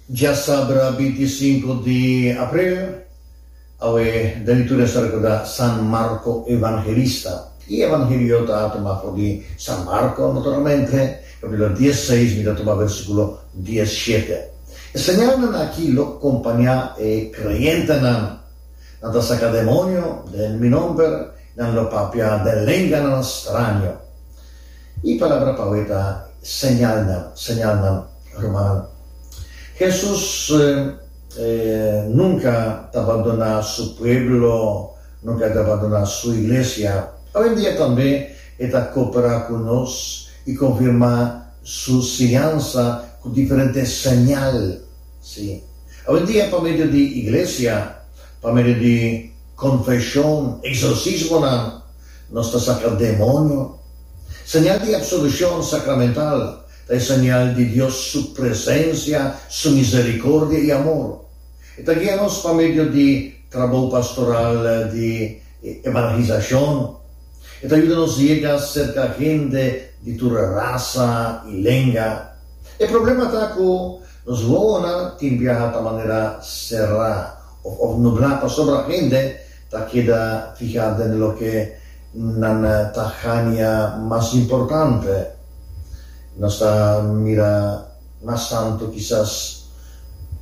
Dja sabra binti i sinku di april, awe David tur esta rekuda San Marko Evangelista i e Evangelio ta tuma for di San Marko, naturalmente, kapitulo dies i seis, mi ta tuma versikulo dies i shete. E señalnan aki lo kompañá e kreyentenan, Nan ta saka demonio den mi nomber, nan lo papia den lenganan straño. E palabra pa awor ta señalnan, señalnan, rumannan. Hesus nunka ta bandoná su pueblo, nunka e ta bandoná su iglesia. Awendia tambe e ta koperá ku nos i konfirmá su siñansa ku diferente señal. Sí, awendia pa medio di iglesia, pa medio di konfeshon, eksorsismonan. nos ta saka demonio. Señal di absolucion sacramental ta e señal di Dios su presencia, su misericordia y amor. E ta guia nos pa medio di trabou pastoral di evangelisacion. E ta yuda nos yega cerca hende di tur raza y lenga. E problema ta cu nos wowonan tin biaha ta manera cerá of nubla pasobra hende Ta keda fihá den loke nan ta hania mas importante. Nos ta mira mas tantu kisas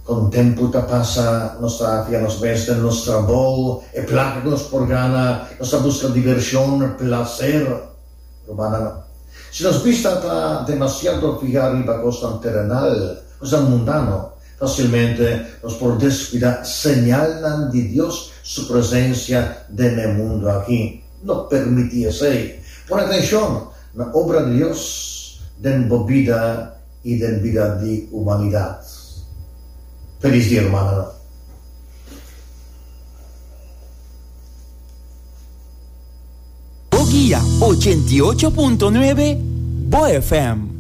kon tempu ta pasa. Nos ta fihá nos mes den nos trabou, e plaka ku nos por gana. Nos ta buska divershon, plaser. Rumannan, si nos bista ta demasiado fihá riba kosnan terenal, kosnan mundano, Facilmente nos por descuida señalnan di Dios su presencia den e mundo aki. No permiti esey. Pone atencion na obra di Dios den bo bida y den bida di humanidad. Feliz Dia Humano! Boguia ochenta y ocho punto nuebe, bo FM.